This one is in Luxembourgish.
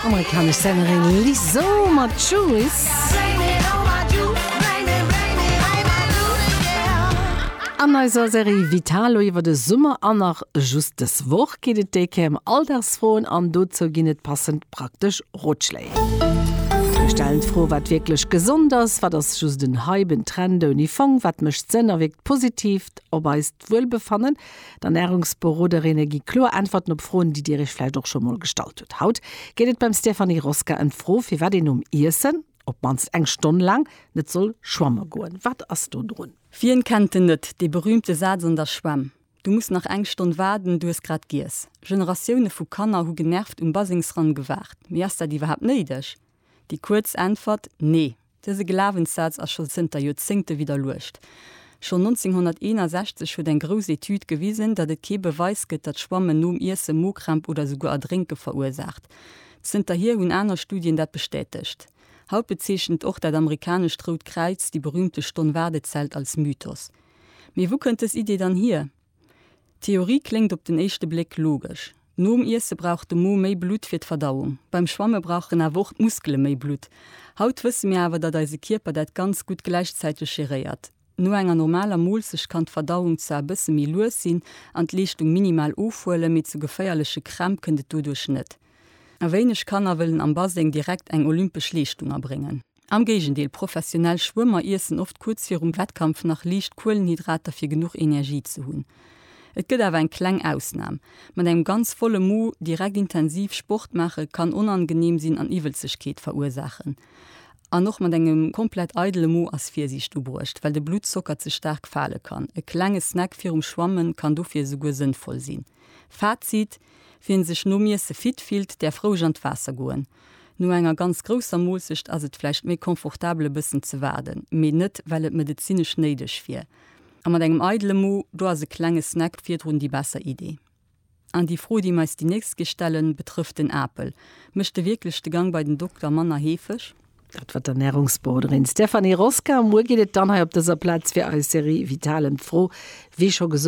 Amerikanesch Sängerin Lizzo mat Juice. An eiser Serie Vitalo iwwer de Summer an nach just dës Woch geet et déi Kéier ëm Alldagsfroen an dozou ginn et passend praktesch Rotschléi. Mir stellen d'Fro, wat wierklech gesond ass, wat ass just en Hype, en Trend ouni Fong, wat mécht Sënn a wierkt positiv op eist Wuelbefannen? D'Ernärungsberoderinne gi kloer Äntwerten op Froen, déi Dir Iech vläicht och scho mol gestallt hutt. Haut geet et beim Stéphanie Rosca ëm d'Fro, firwat een nom Iessen op d'mannst eng Stonn laang net soll schwamme goen. Wat ass do drun? Wien kennt en net, dee berühmte Saz an der Schwämm, Du muss nach eng Stonn waarden, du hues grad giess. Generatioune vu Kanner hu genervt um Basengsrann gewaart. Mee ass dat iwwerhaapt néideg? Déi kuerz Äntwert, Nee! Dëse Glawenssaz ass scho zënter Joerzéngte widderluecht. Schonn 1961 huet eng grouss Etüd gewisen, datt et kee Beweis gëtt, datt Schwammen nom Iesse Mokrämp oder souguer Erdrénke verursaacht. Zënterhier hunn aner Studien dat bestätegt. Haut bezeechent och dat amerikanescht Rout Kräiz déi berüümte Stonn-Waardezelt als Mythos. Mee wou kënnt dës Idee dann hier? D'Theorie kléngt op den éischte Bléck logesch, Nom Iesse brauch de Mo méi Blutt fir d'Verdauung. Beim Schwamme brauch en awer och d'Muskele méi Blutt. Haut wësse mir awer, datt eise Kierper dat ganz gutt gläichzäiteg geréiert. No enger normaler Moolzecht kann d'Verdauung zwar e bësse méi lues sinn an d'Leeschtung minimal ofhuelen, mee zu geféierleche Krämp kënnt et doduerch net. A wéineg Kanner wëllen am Baseng direkt eng olympesch Leeschtung erbréngen. Am Géigendeel, professionell Schwëmmer iessen oft kuerz virum Wettkampf nach liicht Kuelenhydrater fir genuch Energie ze hunn. Et gëtt awer eng kleng Ausnam, Mat engem ganz volle Mo direkt intensiv Sport maache kann onangeneem sinn an Iwwelzegkeet verursaachen. An och mat engem komplett eidele Mo ass Virsiicht ubruecht, well de Bluttzocker ze staark fale kann. E klenge Snack virum Schwammen kann dofir esouguer sënnvoll sinn. Fazit, Wien sech nom Iesse fit fillt, däerf roueg an d'Waasser goen. No enger ganz grousser Moossecht ass et vläicht méi confortabel e bëssen ze waarden, mee net well et medezinesch néideg wier. A mat engem eidele Mo, do ass e klenge Snack virdrun déi besser Idee. An déi Fro déi mir eis déi nächst Kéi stellen, betrëfft den Apel. Mécht e wierklech de Gang bei den Dokter manner heefeg? Dat war d'Ernärungsberoderin Stéphanie Rosca. Muer geet et dann hei op dëser Plaz fir eis Serie Vital ëm d'Fro, wéi scho gesot,